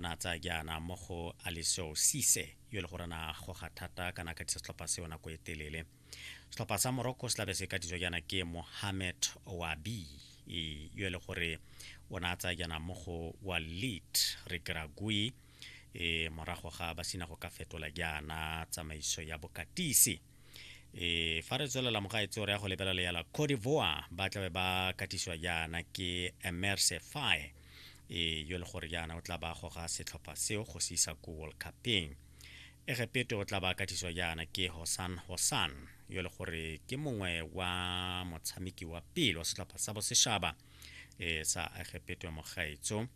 Na a tsaya jaana mo go Alessio Cisse, yo e le gore na goga thata kana ka disa setlhopha seo nako e telele. Setlhopha sa Morocco se tlabe se ka ditswa jaana ke Mohamed Ouabi, yo e le gore o na a tsaya jaana mo go Walid Regragui, morago ga ba sina go ka fetola jaana tsamaiso ya bokatisi. E, fa re tswelela mogaetse o re ya go lebelela ya la Cote d'Ivoire, ba tlabe ba katisiwa jaana ke Emerse Faye. e yo le gore jaana o tla ba goga setlhopha seo go se isa ko world cupeng egepeto o tla ba katiswa jaana ke hosan hosan yo le gore ke mongwe wa motshameki wa pele wa setlhopha sa bosešaba e sa egepeto ya mogaetso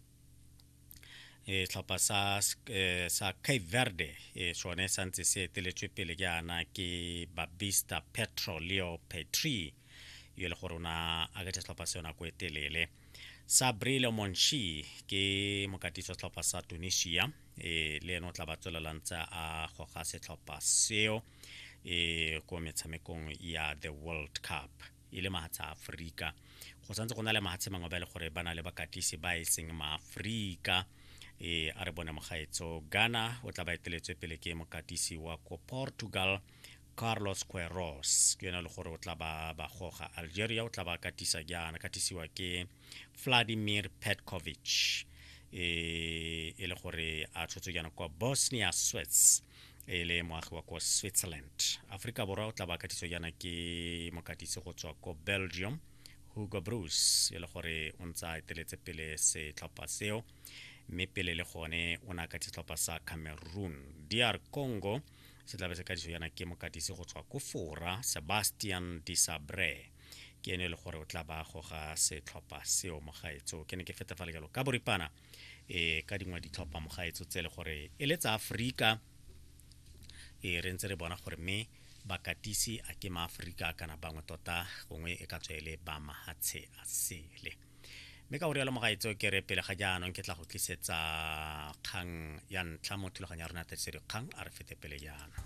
e tlhopha sa e, sa Cape Verde e sone sa ntse se eteletswe pele jaana ke Babista Petro Leo Petri yo e le gore o na a ketse setlhopha se yona ko e telele sabri le monchi ke mokatisi wa setlhopha sa tunisia e le ene o tla ba tswelelang tsa a goga setlhopha seo e ko metshamekong ya the world cup e le mahatsha aforika go santse go na le mahatshe mangwe ba e le gore ba na le bakatisi ba e seng maaforika e a re bone mogaetso ghana o tla ba eteletswe pele ke mokatisi wa ko portugal carlos queros ke yone le gore o tla ba ba goga algeria o tla ba katisa jaana katisiwa ke vladimir petkovic e, e le gore a tshotswe jaana kwa bosnia swets e le moagi wa ko switzerland aforika borwa o tla ba katiso jaana ke mokatisi go tswa ko belgium hugo bruce e le gore o ntse a eteletse pele setlhopha seo mme pele le gone o ne a katisa setlhopha sa cameroon dr congo se tlabe se kadiso yana ke mokatisi go tswa ko fora sebastian disabre ke ene e le gore o tla ba goga setlhopha seo mogaetso ke ne ke feta fa lekalo ka boripana e ka dingwe ditlhopha mogaetso tse e le gore e le tsa aforika e re ntse re bona gore mme bakatisi a ke maaforika kana bangwe tota gongwe e ka tswa e le ba mahatshe a sele mme ka go rialo mogaetseo ke re pele ga jaanong ke tla go tlisetsa kgang ya ntlha mo thulaganyo ya rona tiriso dikgang a re fete pele jaana